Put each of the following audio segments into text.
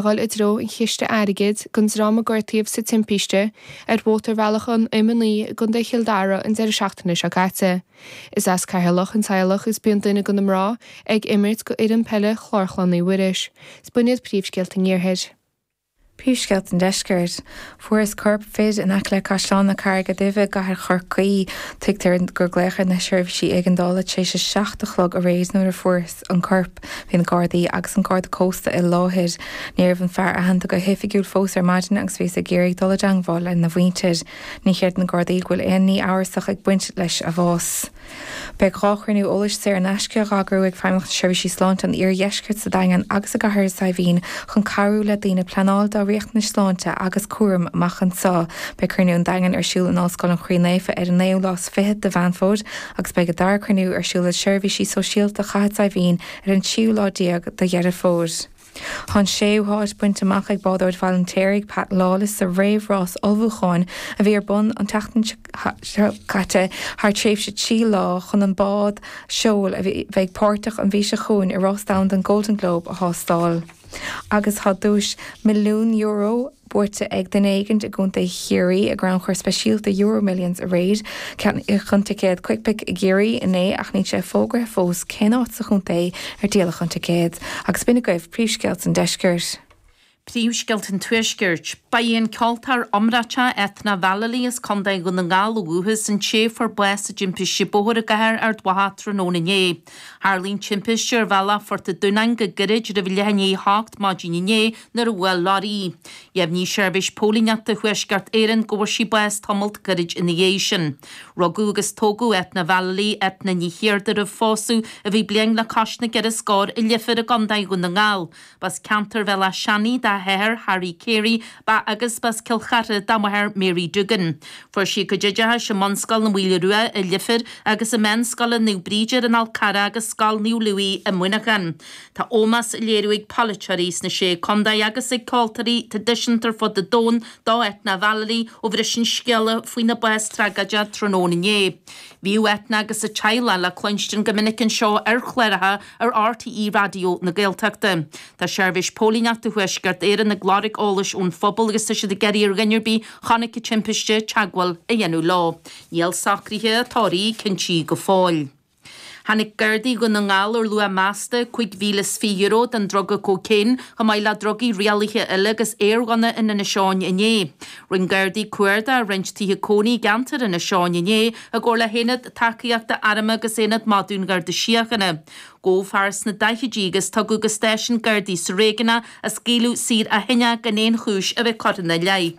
a dhul i dtreo an chiste airgid don dream a gortaíodh sa timpiste ar mhótarbhealach an M9 i gContae Chill Dara an deireadh seachtaine seo caite. Is as Ceatharlach an teaghlach agus bíonn duine de na mná ag imirt do fhoireann peile Chlár Chlainne Mhuiris. Is b'in iad príomhscéalta an iarthair. príomhscéalta an deiscirt. Fuarthas corp fir in aice le Caisleán na Carraige Duibhe i gcathair Chorcaí. Tuigtear gur glaodh ar na seirbhísí éigeandála tar éis a seacht a chlog aréir nuair a fuarthas an corp. Bhí na Gardaí agus an Garda Cósta i láthair. Ní raibh an fear aitheanta go hoifigiúil fós ar maidin agus bhíothas ag iarraidh dul i dteangmháil lena mhuintir. Ní chreideann na Gardaí go bhfuil aon ní amhrasach ag baint leis an mbás. Beidh dhá chruinniú eolais saor in aisce á n-eagrú ag Feidhmeannacht na Seirbhíse Sláinte an Iardheiscirt sa Daingean agus i gCathair Saidhbhín chun cabhrú le daoine pleanáil dá riachtanais sláinte agus cúraim amach anseo. Beidh cruinniú an Daingin ar siúl in Ollscoil an Chroí Naofa ar an 9ú lá is fiche de Mheán Fómhair agus beidh an dara cruinniú ar siúl i Seirbhísí Sóisialta Chathair Saidhbhín ar an tríú lá déag de Dheireadh Fómhair. Tá an séú háit bainte amach ag bádóir Bhaile an Fheirtéaraigh, Pat Lawless, sa réamhrás ullmhúcháin a bhí ar bun an tseachtain seo caite thar tréimhse trí lá chun na báid seoil a bheidh páirteach an mhí seo chugainn i Rás Domhanda an Golden Globe a thástáil agus tá duais €1,000,000 buaite ag duine éigin i gContae Chiarraí i gcrannchur speisialta EuroMillions aréir. Ceannaíodh an ticéad Quickpick i gCiarraí inné ach níl sé fógraithe fós cén áit sa chontae a díoladh an ticéad. Agus b'in agaibh príomhscéalta an deiscirt. Príomhscéalta an tuaiscirt. Ba í an ceoltóir iomráiteach Eithne Vallely as Contae Dhún na nGall ó dhúchas an té a fuair bás i dtimpiste bóthair i gcathair Ard Mhacha tráthnóna inné. Tharlaigh an timpiste ar Bhealach Phort a' Dúnáin go gairid roimh leath i ndiaidh a hocht maidin inné, nuair a bhuail leoraí í. Dheimhnigh Seirbhís Póilíneachta Thuaisceart Éireann go bhfuair sí bás tamalt gairid ina dhiaidh sin. Rugadh agus tógadh Eithne Vallely, Eithne Ní Chiardha, roimh phósadh, a bhí bliain le cois na gceithre scór, i Leifear i gContae Dhún na nGall. B'as ceantar Bhéal Átha Seanaidh dá hathair, Harry Carey, ba agus b'as Cill Chartha dá máthair, Mary Doogan. Fuair sí a cuid oideachais i mBunscoil na Maoile Rua i Leifear agus i Meánscoil Naomh Bríd ar an Fhál Charrach agus Scoil Naomh Louis i Muineachán. Tá ómós á léiriú ag polaiteoirí sna Sé Condae agus ag ceoltóirí tradisiúnta ar fud an domhain do Eithne Vallely ó bhris an scéala faoina bás tragóideach tráthnóna inné. Bhíodh Eithne agus a teaghlach le cluinstin go minic anseo ar chláracha ar RTÉ Raidió na Gaeltachta. Tá Seirbhís Póilíneachta Thuaisceart Éireann ag lorg eolais ón phobal agus tá siad ag iarraidh ar dhuine ar bith a chonaic an timpiste teagmháil a dhéanamh leo. Níl socraithe a tórraimh cinntithe go fóill. Tháinig Gardaí Dhún na nGall ar luach measta €5,020 den druga cócaon, chomh maith le drugaí rialaithe eile agus aerghunna in Inis Eoghain inné. Rinne Gardaí cuardach i roinnt tithe cónaí i gceantar Inis Eoghain inné i gcomhar le hAonad Tacaíochta Airm agus Aonad Madadh an Gharda Síochána. Gabhadh fear sna daichidí agus tugadh go stáisiún Gardaí sa réigiún é ach scaoileadh saor ó shin é gan aon chúis a bheith curtha ina leith.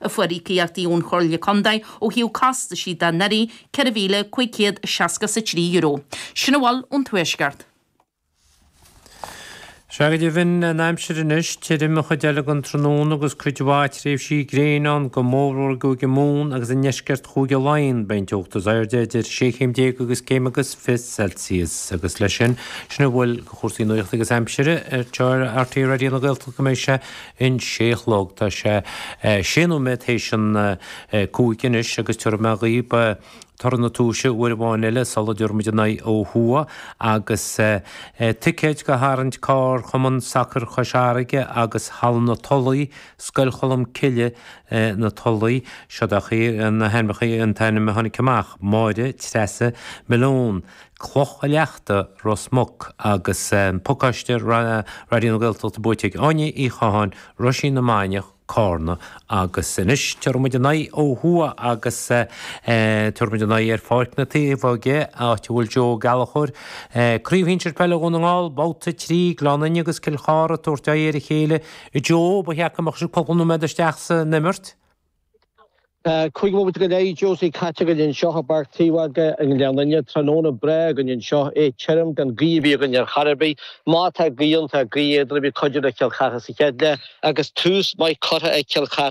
a fuair íocaíochtaí ón Chomhairle Contae ó thaobh costaisí de anuraidh, €4,563. Sin a bhfuil ón Tuaisceart. Sea, go deimhin, an aimsir anois, tirim an chuid eile den tráthnóna agus cuid mhaith tréimhsí gréine ann, go mórmhór i gCúige Mumhan agus i ndeisceart Chúige Laighean. Beidh an teocht is airde idir sé chéim déag agus céim agus fiche Celsius. Agus leis sin, sin a bhfuil de chúrsaí nuachta agus aimsire ar rté Raidió na Gaeltachta go mbeidh sé. an sé a chlog. Tá sé sé nóiméad théis an cúig anois agus tiubharfaidh mé dhaoib toradh na tomhaise uair amháin eile sul a dtiubharfaimid a n-aghaidh ó thuaidh agus ticéid do tharraint carr Chumann Sacair Chois Fharraige agus Halla na Tulaí, Scoil Cholm Cille, na Tulaí. Siod agaibh na hainmneachaí an t-ainm a tháinig amach, Máire Treasa Malone. Cloch a' Leachta, Ros Muc, agus pacáiste Raidió na Gaeltachta buaite ag Áine Uí Chatháin, Roisín na Mainiach, Cárna, agus anois tabharfaidh muid a n-aghaidh ó thuaidh agus tabharfaidh muid a n-aghaidh ar Pháirc na Taobhóige, áit a bhfuil Joe Ó Gallchóir, Craobh Shinsear Peile Dhún na nGall, Babhta 3, Gleann Fhinne agus Cill Chartha ag tabhairt aghaidh ar a chéile. Joe, ba cheart go mbeadh sibh cúpla nóiméad isteach san imirt? Tá cúig bhomaite go leith Josie caite againn anseo i bPáirc Taobhóige i nGleann Fhinne. Tráthnóna breá againn anseo, é tirim, gan gaoth ar bith againn ar chor ar bith. Má tá gaoth ann, tá gaoth éadrom, a bheidh ag cuidiú le Cill Chartha sa chéad leath agus tús maith curtha ag Cill Chartha.